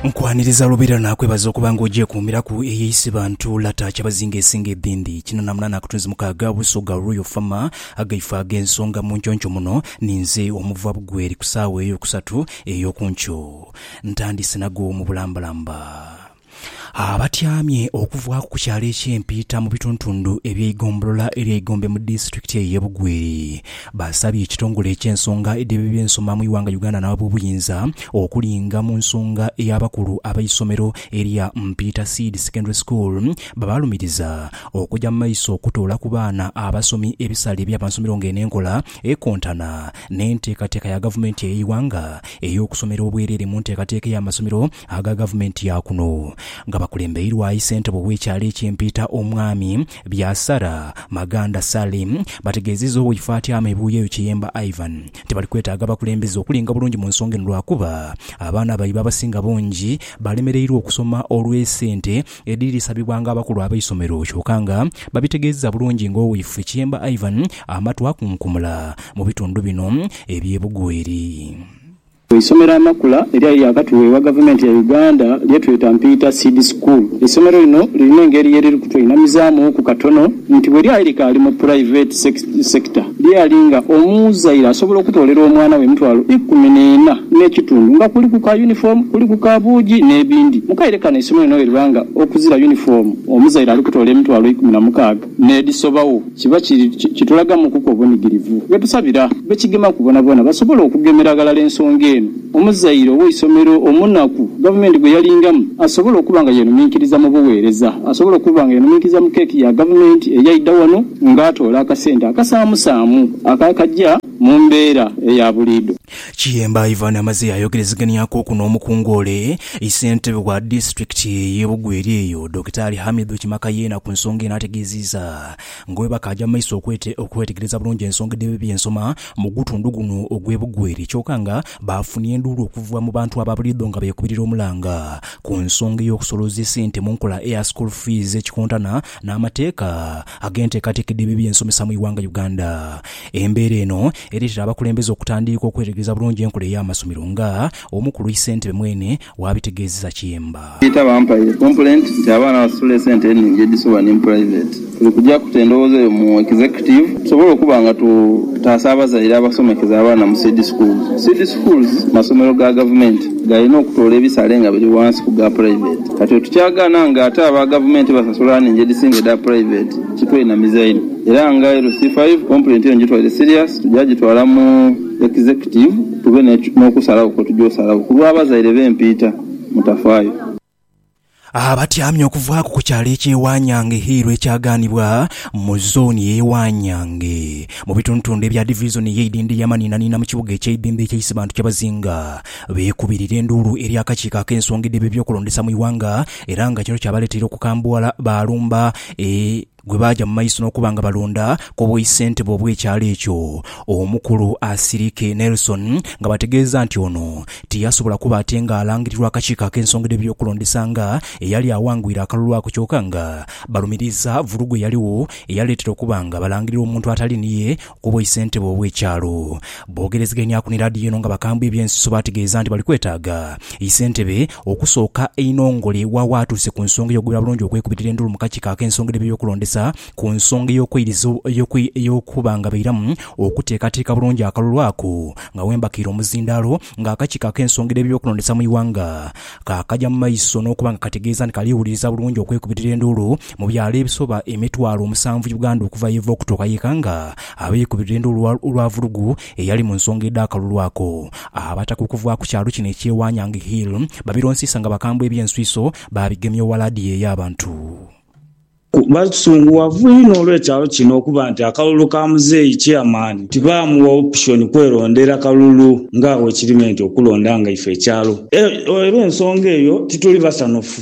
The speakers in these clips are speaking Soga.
Nkwaniriza lubeerera naakwebaza okuba nga ogyekuumiraku eyo eisibantu Lata Kyabazinga esinga edhindi. Kino naamuna n'akatunzi mukaaga Busoga Royal Farmer agaifo ag'ensonga mu nkyoncho muno ninze omuva bugweri ku saawa ey'okusatu ey'okunkyo. Ntandise nago mu bulambalamba. Abatyamye okuvaaku ku kyalo eky'e Mpiita mu bituntundhu eby'eigombolola ery'e Igombe mu disitulikiti eyo ey'e Bugweri Baasabye ekitongole eky'ensonga edh'eby'ensoma mu ighanga Uganda n'ab'obuyinza okulinga mu nsonga ey'abakulu ab'eisomero erya Mpiita Seed Secondary School babalumiriza okuja mu maiso okutoola ku baana abasomi ebisale eby'amansomero ng'eno enkola ekontana n'enteekateeka ya gavumenti ey'eighanga ey'okusomera obwereere mu nteekateeka ey'amasomero aga gavumenti ya kuno nga bakulembeirwa yi ssentebe ow'ekyalo eky'empiita omwami Byasara Maganda Salim bategeezizza oweifatyama e Buyeyo Kiyemba Ivan nti bali kwetaaga abakulembeze okulinga obulungi mu nsonga eno lwakuba abaana baibwe abasinga bungi balemereirwa okusoma olw'esente edhiri dhisabibwanga abakulu abeisomero kyoka nga babitegeezizza bulungi nga oweifwe Kiyemba Ivan amatu akunkumula mu bitundu bino eby'e Bugweri. Eisomero amakula eryali lyakatuweebwa Gavumenti ya Uganda lyetweta Mpiita Seed School. Eisomero lino lirina engeri ye liri kutweinamizaamu ku katono nti bwe lyali likaali mu puraiveti sekita, lyali nga omuzaire asobola okutoolera omwana we emitwalo ikumi n'ena n'ekitundu nga kuliku ka yunifoomu, kuliku ka buugi n'ebindi. Mu kaire kano eisomero lino bweriba nga okuzira yunifoomu omuzaire ali kutoola emitwalo ikumi na mukaaga. n'edhisobagho, kiba kitulagamukuku obunigirivu. Ghetusabira bekigemaku boonaboona basobole okugemera ghalala ensonga eno. Omuzaire ow'eisomero omunaku gavumenti gwe yalingamu asobole okuba nga yeenhuminkiriza mu bugheereza, asobole okuba nga yeenhuminkiriza mu keeki ya gavumenti eyaidha wano ng'atoola akasente akasaamusaamu akakaja mu mbeera eya buliidho. Kiyemba Ivan amaze ayogerezeganyakuku n'omukungu ole i ssentebe wa disitulikiti y'e Bugweri eyo, Dokitaali Hamidu Kimakayeena ku nsonga eno ategeeziza nga bwebakaaja mu maiso okwetegereza bulungi ensonga edh'ebibi by'ensoma mu gutundu guno ogw'e Bugweri kyoka nga baafunye enduulu okuva mu bantu aba buliidho nga beekubirira omulanga ku nsonga ey'okusolooza esente mu nkola eya school fees ekikontana n'amateeka ag'enteekateeka edh'ebyo bye nsomesa mu ighanga Uganda. Embeera eno ereetera abakulembeze okutandiika okwetegereza bulungi enkola ey'amasomero nga Omukulu Isentebe mwene bwabitegeezeza Kiyemba. Peter Bampaire Kompuleenti nti abaana basasula esente enhingi edhisobola ni mu pulayiveeti. Tuli kuja kuta endowooza eyo mu Executive tusobole okuba nga tutaasa abazaire abasomekeza abaana mu Seed Schools. Seed Schools masomero ga Gavumenti galina okutoola ebisale nga biri wansi ku ga pulayiveeti. Kati bwe tukyagaana nga ate aba gavumenti basasula nhingi edhisinga edha puraiveeti, kitweinamiza inho era nga LC five kompulenti eno gitwaire siriyasi tugya gitwala mu Executive tube n'okusalagho kwe tugya osalagho ku lw'abazaire b'empiita, Mutafaayo. Abatyamye okuvaaku ku kyalo eky'e Wanyange Hill ekyagaanibwa mu zooni y'e Wanyange mu bitundutundu ebya divizoni y'eidhindhiri Amaninaniina mu kibuga eky'eidhindhiri ky'e Isibantu kyebazinga beekubirira enduulu eri akakiiko ak'ensonga edheba eby'okulondesa mu ighanga era nga kino kyabaleteire okukambuwala baalumba e gwe baaja mu maiso n'okuba nga balonda ku bwissentebe obw'ekyalo ekyo omukulu Asirike Nelson nga bategeeza nti ono tiyasobola kuba ate nga alangirirwa akakiiko ak'ensonga edh'eby'okulondesa nga eyali awangwire akalulu ako kyoka nga balumiriza vulugu eyaligho eyaleetera okuba nga balangirira omuntu atali niye ku bwaisentebe obw'ekyalo. Boogerezeganyaku ni laadiyo eno nga bakambwe eby'ensuso baategeeza nti bali kwetaaga isentebe okusooka einho ngole wa waatuuse ku nsonga ey'okugwira bulungi okwekubitira endulu mu kakiiko ak'ensonga edh'ebyo by'okulondesa ku nsonga ey'okweiriza ey'okuba nga bairamu okuteekateeka bulungi akalulu ako nga wembakiire omuzindaalo nga akakiiko ak'ensonga edh'ebyo by'okulondesa mu ighanga kaakaja mu maiso n'okuba nga kategeeza nti kaliwuliriza bulungi okwekubitira enduulu Mu byalo ebisoba emitwalo omusanvu Uganda okuva yeva okutuuka yeka nga abeikubirira enduulu olwa vulugu eyali mu nsonga edh'akalulu ako. Abataka okuva ku kyalo kino eky'e Wanyang Hill babironsiisa nga bakambwe eby'enswiso baabigemya ewala dhi eyo abantu. Basunguwavu inho olw'ekyalo kino okuba nti akalulu ka muzeeyi Chairman tibaamuwa option kwerondera kalulu nga bwekiri nti okulonda nga ife ekyalo era ensonga eyo tituli basanhufu.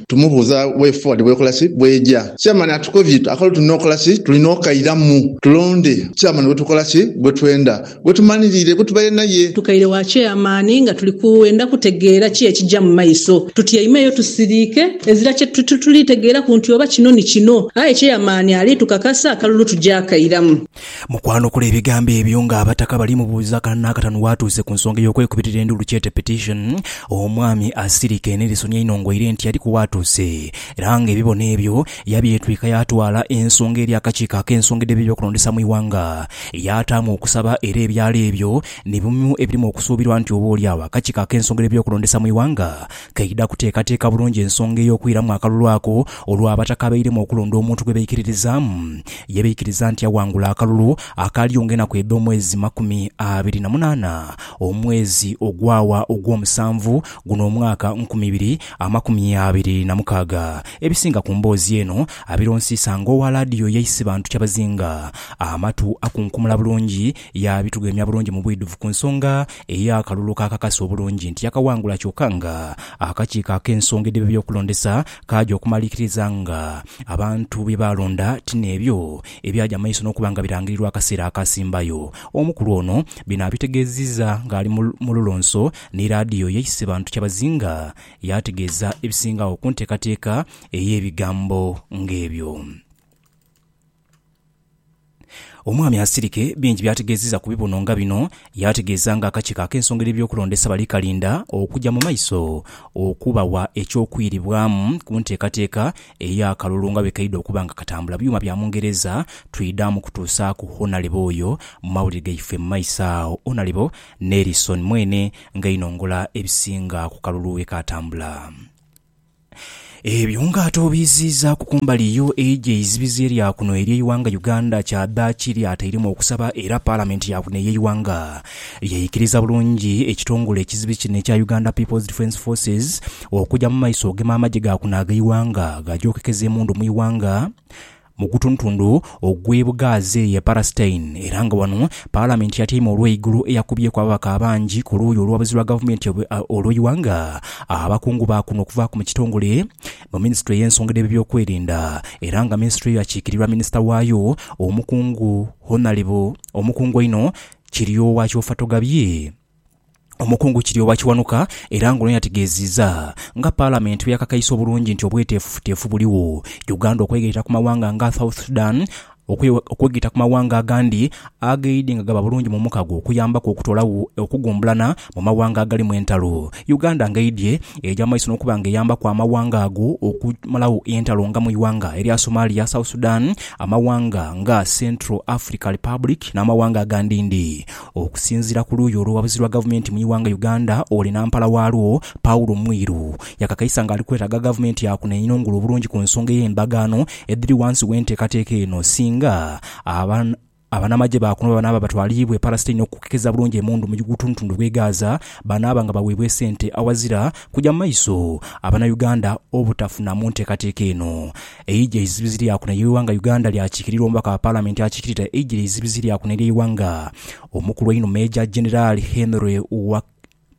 Tumubuuza way forward bwekola ki, bweja. Chairman atukobye akalo tulina okola ki, tulina okairamu tulonde chairman gwetukola ki, gwetwenda, gwetumanirire, gwetubaire naye. Tukaire wa chairman nga tuli kwenda kutegeera ki ekija mu maiso. Tutyaimeyo tusiriike ezira kye tuli tegeeraku nti oba kino ni kino. Aye chairman ali tukakasa akalulu tuja kairamu. Mu kwanukula ebigambo ebyo nga abataka bali mubuuza akana n'akatanu waatuuse ku nsonga ey'okwekubitira enduulu kyete petition, omwami Asirika Enerisoni ainong'oire nti yaliku waatuuse era nga ebibono ebyo yabyetwika yaatwala ensonga eri akakiiko ak'ensonga edh'ebyokulondesa mu ighanga yaataamu okusaba era ebyalo ebyo ni bimu ebirimu okusuubirwa nti oba oli agho akakiiko ak'ensonga edh'ebyokulondesa mu ighanga Keidha kuteekateeka bulungi ensonga ey'okwiramu akalulu ako olwo Abataka abairemu okulonda omuntu gwe baikiririzaamu. Ye baikiriza nti awangula akalulu akaaliyo ng'enaku edh'omwezi makumi abiri na munaana omwezi ogwawa ogw'omusanvu guno omwaka nkumi ibiri amakumi abiri na mukaaga. Ebisinga ku mboozi eno abironsiisa ng'owa laadiyo ya Isibantu Kyabazinga. Amatu akunkumula bulungi Yaabitugheemya bulungi mu bwidhuvu ku nsonga ey'akalulu k'akakasa obulungi nti yakaghangula kyoka nga akakiiko ak'ensonga edhiba eby'okulondesa kaaja okumalirikiriza nga abantu bye baalonda ti n'ebyo ebyaja mu maiso n'okuba nga birangirirwa akaseera akaasimbayo. Omukulu ono bino abitegeezizza ng'ali mu lulonso ni laadiyo ye Isebantu Kyabazinga yaategeeza ebisinga agho ku nteekateeka ey'ebigambo ng'ebyo. Omwami Asirike bingi by'ategeezezza ku bibuno nga bino, yaategeeza nga akakiiko ak'ensonga edh'ebyokulondesa bali kalinda okugya mu maiso okubawa eky'okwiribwamu ku nteekateeka ey'akalulu nga bwe kaidha okuba nga katambula byuma bya Mungereza. Twidhaamu kutuusaaku Honalebo oyo mu mawulire gaife mu maiso agho. Honalebo Nelson mwene nga einongola ebisinga ku kalulu bwe kaatambula. Ebyo nga ate obiiziizaaku ku mbali yo eija eizibizi erya kuno ery'eighanga Uganda kyadhaaki lyatairemu okusaba era Palamenti ya kuno ey'eighanga yaikiriza bulungi ekitongole ekizibi kino ekya Uganda People's Defence Forces okuja mu maiso ogema amagye ga kuno ag'eighanga gaje okekeza emundu mu ighanga mu gutundutundu ogw'e Bugaazi eyo e Palestine era nga wano Palamenti eyatyaime olw'eigulu eyakubyeku ababaka abangi ku luuyi olw'abazizi lwa gavumenti olw'eighanga, abakungu ba kuno okuvaaku mu kitongole mu minisitule ey'ensonga edh'ebyokwerinda era nga minisitule eyo akiikirirwa minisita waayo omukungu Hon. Omukungu einho Kiryowa Kyofatogabye. Omukungu Kirya owa Kiwanuka era ng'ono yategeeziza nga Palamenti bweyakakaisa obulungi nti obweteefufuteefu buligho Uganda okwegaita ku mawanga nga South Sudan okwegaita ku mawanga agandi ageidhi nga gaba bulungi mu mukago okuyambaku okutoolagho okugumbulana mu mawanga agalimu entalo Uganda ng'eidhye egya maiso n'okuba nga eyambaku amawanga ago okumalagho entalo nga mu ighanga erya Somalia, South Sudan, amawanga nga Central Africa Republic n'amawanga agandindi. Okusinzira ku luuyi olw'owabuzi lwa gavumenti mu ighanga Uganda oli nampala waalwo, Paul Mwiru yakakaisa nga ali kwetaga gavumenti ya kuno einhongole obulungi ku nsonga ey'endagaano edhiri wansi w'enteekateeka eno singa aba Abanamagye ba kuno bwebanaaba batwaliibwa e Palasitini okukekeza bulungi emundu mu butundutundu bw'e Gaza banaaba nga baweebwa esente awazira kugya mu maiso Abanauganda obutafunamu nteekateeka eno Eidhi eizibizi lyakuna eighanga Uganda lyakiikirirwa omubaka wa Palamenti akiikirira eidhi eizibizi lyakuna ery'eighanga, omukulu einho Meeja Jeneraali Henry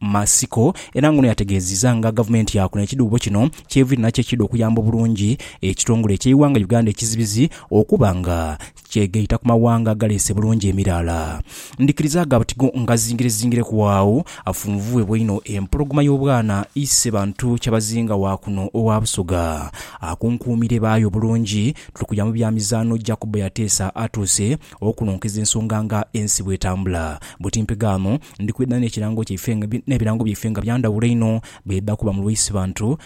Matsiko era ng'ono yategeezizza nga Gavumenti yakuna ekidhuubo kino ky'eviire nakyo ekiidha okuyamba obulungi ekitongole eky'eighanga Uganda ekizibizi okuba nga kyegaita ku mawanga agaleese bulungi emiraala. Ndhikiriza gha buti go ngazingirezingireku agho, afunvubwe bweinho empologoma y'obwana ise bantu kyabazinga wa kuno owa Busoga. Akunkuumire baayo bulungi, tuli kuya mu bya mizaano Jacobo yateesa atuuse okunonkeza ensonga nga ensi bw'etambula. Buti mpe gaano, ndi kwidha n'ekirango kyaife n'ebirango byaife nga bya ndhawulo inho bw'edha kuba mu lwa ise bantu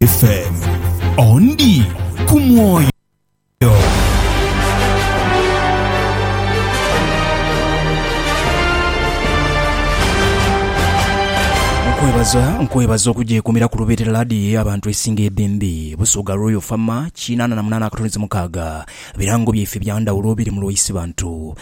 FM ondi ku mwoyo. Nkwebaza nkwebaza okugyekumira ku lubeerera laadiyo y'abantu esinga ebembe Busoga Royal Farmer kinaana na munaana akatoneze mukaaga birango byaife bya ndhawulo biri mu lwaisi bantu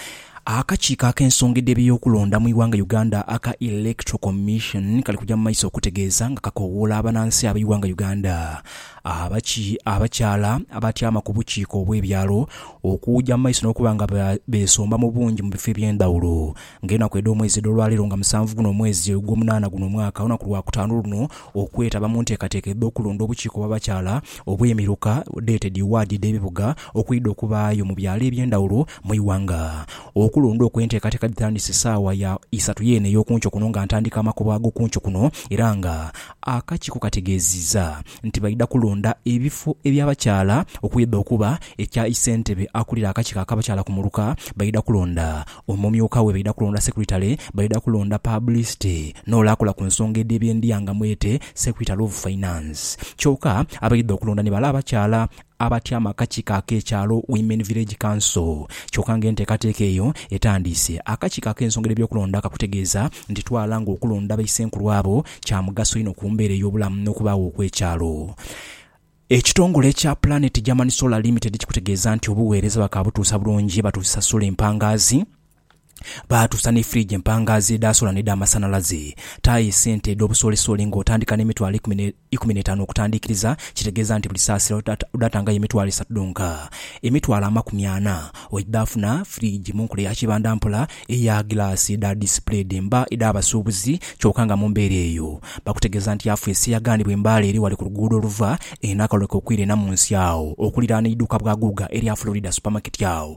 Akakiiko ak'ensongedha eby'okulonda mu ighanga Uganda aka Electoral Commission kali kuja mu maiso okutegeeza nga kakowoola abanansi abeighanga Uganda abaki abakyala abatyama ku bukiiko obw'ebyalo okuuja mu maiso n'okuba nga besomba mu bungi mu bifo eby'endhawulo nga enaku edh'omwezi edh'olwaleero nga musanvu guno omwezi ogw'omunaana guno omwaka olunaku lwa kutaanu luno okwetaba mu nteekateeka edh'okulonda obukiiko bw'abakyala obw'emiruka dated ward edh'ebibuga okwidha okubaayo mu byalo eby'endhawulo mu ighanga. Okulonda okwo enteekateeka dhitandise saawa ya isatu yeene ey'okunkyo kuno nga ntandika amakubo ag'okunkyo kuno era nga akakiiko kategeeziza nti baidha kulonda ebifo eby'abakyala okwidha okuba ekya isentebe akulira akakiiko ak'abakyala ku muluka, baidha kulonda omumyuka we, baidha kulonda secretary, baidha kulonda pabulisite n'ole akola ku nsonga edh'ebyendia nga mwete secretary of finance kyoka abaidha okulonda ni bale abakyala. abatyama akakiiko ak'ekyalo, Women Village Council, kyoka nga enteekateeka eyo etandiise. Akakiiko ak'ensonga dh'ebyokulonda kakutegeeza nti twala nga okulonda baisenkulu abo kya mugaso inho ku mbeera ey'obulamu n'okubaagho okw'ekyalo. Ekitongole ekya Planet German Solar Limited kikutegeeza nti obuweereza bakaabutuusa bulungi batuusisa solar empangaazi, Baatuusa ni firiji empangaazi edha sola n'edhamasanhalaze. Taayo esente edh'obusoolisooli ng'otandika n'emitwalo eikumi n'etaanu okutandiikiriza, kitegeeza nti buli saasiro odhatangayo emitwalo esatu dhonka. Emitwalo amakumi ana oidhafuna firiji mu nkola ya kibanda mpola eya gilaasi edha disipule edhemba edh'abasuubuzi kyoka nga mu mbeera eyo bakutegeeza nti yafeesi eyagaanibwa e Mbale eri wale ku luguudo oluva e Nakaleke okwira e Namunsi agho okuliraana eiduuka bwa Guuga erya Florida Supermarket agho